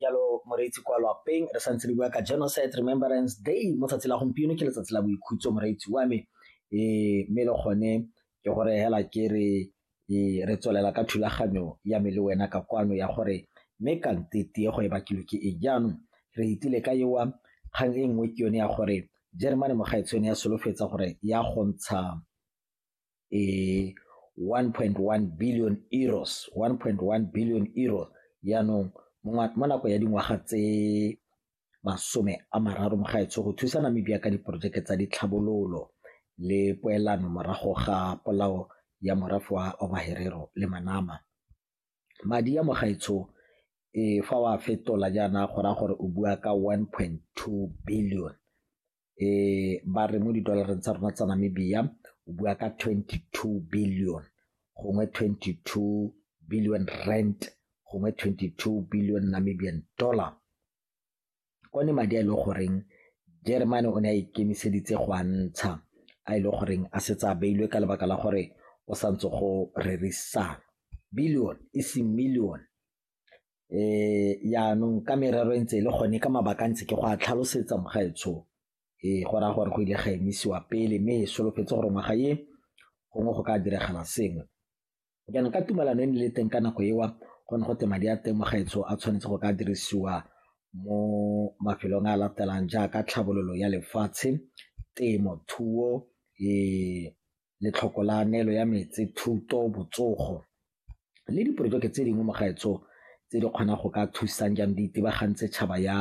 jalo moreetsi kwa lapeng re santse re bua ka genocide remembrance day mo tsatsi la gompieno ke letsatsi la boikhutso moreetsi wa me um mme le gone ke gore hela ke re e, re tswelela ka thulaganyo ya me le wena ka kwano ya gore mme kante tiego e bakilwe ke e jaanong re itile ka ewa kgang e nngwe ke yone ya gore jeremane mogaetshone ya solofetsa gore ya gontsha 1.1 e, billion euros 1.1 billion euros yaanong mo nako ya dingwaga tse masome a mararo mo gaetsho go thusa namibia ka diporojeke tsa ditlhabololo le poelano morago ga polao ya morafe wa obaherero le manama madi ya mogaetsho e fa wa fetola jaana go raya gore o bua ka 1.2 billion eh ba re mo didolareng tsa rona tsa Namibia o bua ka 22 billion gongwe 22 billion rent gongwe 22 billion Namibian dollar kone madi a ile e goreng Germany o ne a ikemiseditse go a ntsha a ile e goreng a setse a beilwe ka lebaka la gore o santse go rerisana billion e seng million Jaanong ka merero e ntse e le gone ka mabaka a ntse ke go a tlhalosetsa mogaetsho go raya gore go ile ga emisiwa pele mme e solofetse gore ngwaga e gongwe go ka diragala sengwe. Jaanong ka tumelano e ne le teng ka nako eo go ne go te madi a teng mogaetsho a tshwanetse go ka dirisiwa mo mafelong a latelang jaaka tlhabololo ya lefatshe, temo thuo letlhoko la neelo ya metse, thuto, botsogo le diporojeke tse dingwe mo gaetsho tse di kgonang go ka thusang jang di itebagantse tšhaba ya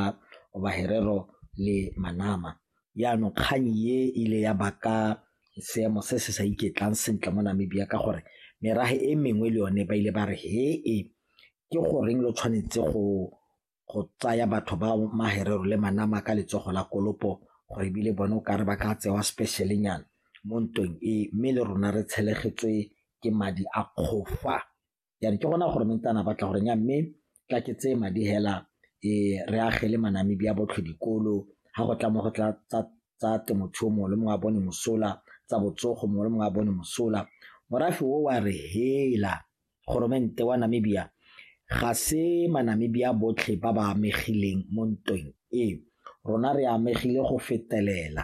Oba Herero le Manama. Jaanong kgang e ile ya baka seemo se se sa iketlang sentle mo Namibia ka gore merafe e mengwe le yone ba ile ba re he e ke goreng lo tshwanetse go go tsaya batho ba maherero le manama ka letsogo la kolopo gore ebile bone o kare ba ka tsewa specialenyana mo ntweng e mme le rona re tshelegetswe ke madi a kgofa yana ke gona gore mentana batla gore nya mme tla ke tseye madi hela e re agele manamedi a botlhe dikolo ga go tla mo go tla tsa temothuo mongwe le mongwe a bone mosola tsa botsogo mongwe le mongwe a bone mosola morafe o wa re hela Goromente wa Namibia ga se Manamibia botlhe ba ba amegileng mo ntweng e, rona re amegile go fetelela.